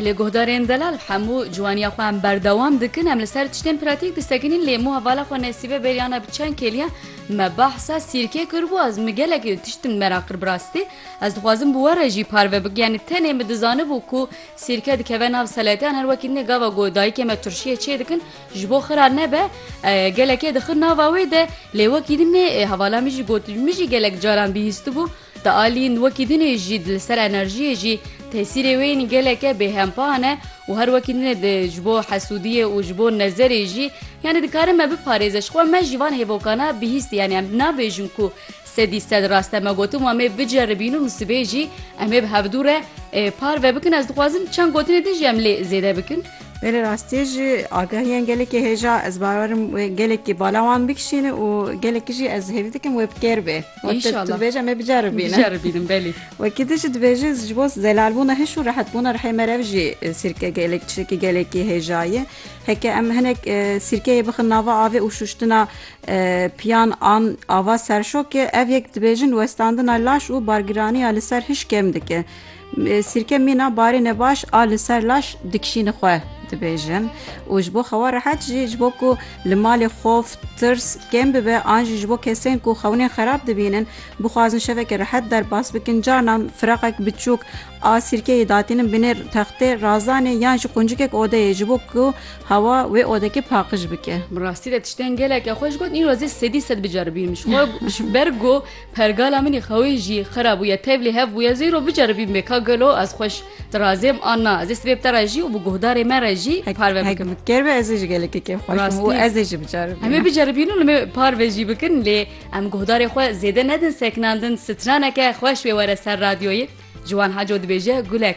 Lê guhdarên delal hemû ciwaniya xwe em berdewam dikin em li ser tiştên pratîk disekinîn lê mû hevala xwe nesîbe bêriyana bi çend kêliye me bahsa sîrkê kiribû ez min gelekî tiştin mera qir bi rastî ez dixwazim bi we re jî parve bik yanî tenê min dizanibû ku sîrke dikeve nav seleteyan her wekî nê gava ku dayikê me turşiyê çê dikin ji bo xira nebe gelekê dixin nava wê de lê wekî din nê hevala min jî got min jî gelek caran bihîstibû Di alîn wekî din ê jî li ser enerjiyê jî tesîrê wê yên geleke bêhempa hene û her wekî din ê di ji bo hesûdiyê û ji bo nezerê jî yanî dikarin me biparêze ji xwe me jî van hêvokana bihîst yanî em nabêjin ku sedî sed rast e me gotin wa mê biceribîn û min sibê jî em ê bi hevdû re parve bikin ez dixwazim çend gotinê din jî em lê zêde bikin. Belê rastî ji agahiyên gelekî hêja ez bawerim gelekî bala wan bikişîne û gelekî jî ez hêvî dikim wê bi kêr bê. Wekî tu dibêje me biceribîne. Biceribînim belê. Wekî tu jî dibêje ji bo zelalbûna hiş û rehetbûna rihê me re jî sîrke gelek tiştekî gelekî hêja ye. Heke em hinek sîrkeyê bixin nava avê û şuştina piyan an ava serşokê ev yek dibêjin westandina laş û bargiraniya li ser hiş kêm dike. Sîrke mîna barê nebaş a li ser laş dikişîni xwe dibêjin û ji bo xewa rehet jî ji bo ku li malê xof tirs kêm bibe an jî ji bo kesên ku xewnên xerab dibînin bixwazin şeveke rehet derbas bikin carnan firaqek biçûk a sîrkeyê datînin binê textê razanê yan ji quncikek odeyê ji bo ku hewa wê odekê paqij bike. Bi rastî de tiştên geleke xweş got îro zê sedî sed biceribîm ji xwe ji ber ku Pergala min ê xewê jî xera bûye, tevlî hev bûye, zêro biceribîm bê ka gelo ez xweş di razêm an na, ez ê sibê bi te re jî û bi guhdarê me re jî parve bikim. Hek ker be ez ê jî gelekî kêf xweş bim û ez ê jî biceribînim. Em ê biceribîn û li me parve jî bikin lê em guhdarê xwe zêde nedin seknandin, straneke xweş wê were ser radyoyê, Ciwan Haco dibêje Gulek.